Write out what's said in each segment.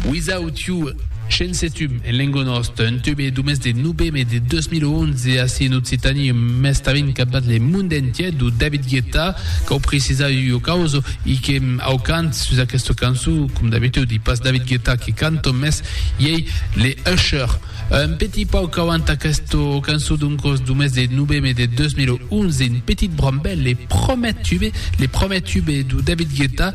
Without You, Shensetum en lengo nòst, un tube du mes de noveme de 2011 ací en Occitània e mès tanben capdat le monde entier, du David Guetta, cau precisar ua causa, i que au cant sus aquesta cançon, com d'abitudi, pas David Guetta que canto, mès iei le Usher. Un petit pauc auant aquesta cançon d'un còs du mes de noveme de 2011, un petit brambèl, le promèt tube, le promèt tube du David Guetta,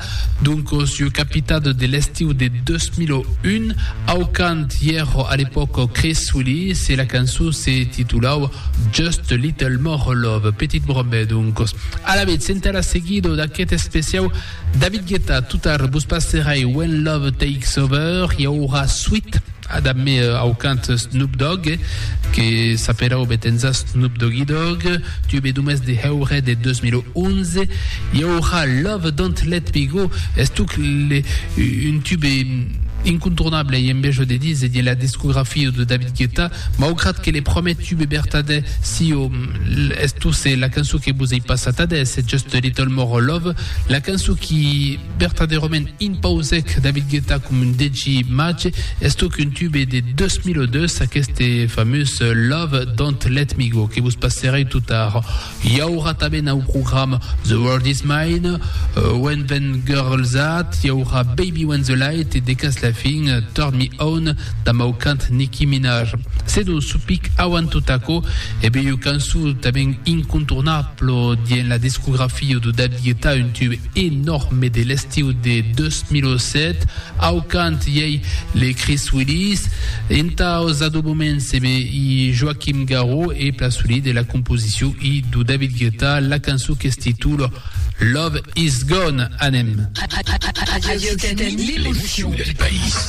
d'un còs ieu capitat de l'estiu de 2001, au cant ièr a l'epòc Chris Willis e la cançon se titulava Just a Little More Love, Petit Brambèl d'un còs. Alavetz, entà la seguida d'aquest especiau David Guetta, totard vos passerai When Love Takes Over, i aurà suit. A dab me au cant Snoop Dogg, que s'apèra obetenza Snoop Doggy Dogg, tube d'umès de heure de 2011. I aurà Love Don't Let Me Go, estuc un tube incontournable e embejo de dins de la discografia de David Guetta, maugrat que le promèt tube bertadè sieu estuse la cançon que vos ei passat adés, Just a Little More Love, la cançon qui. Vertadèrament impausèc David Guetta com un DJ màge, estoc un tube de 2002, aqueste famós Love Don't Let Me Go, que vos passerèi tot ara. I aurà tanben au programa The World Is Mine, When Them Girls At, i aurà Baby When The Light e de cas la fin Turn Me On damb au cant Nicki Minaj. Se non supic auant tot aquò, e bèi ua cançon tanben incontournable dien la discografia de David Guetta, un tube. e Nòrme de l'estiu de 2007, au cant i ei Les Chris Willis, entaus adobaments e be i Joaquim Garro e Plaçoli de la composicion i do David Guetta, la cançon qu'es titula Love Is Gone. Anem! Radio Occitanie, l'émotion du pays.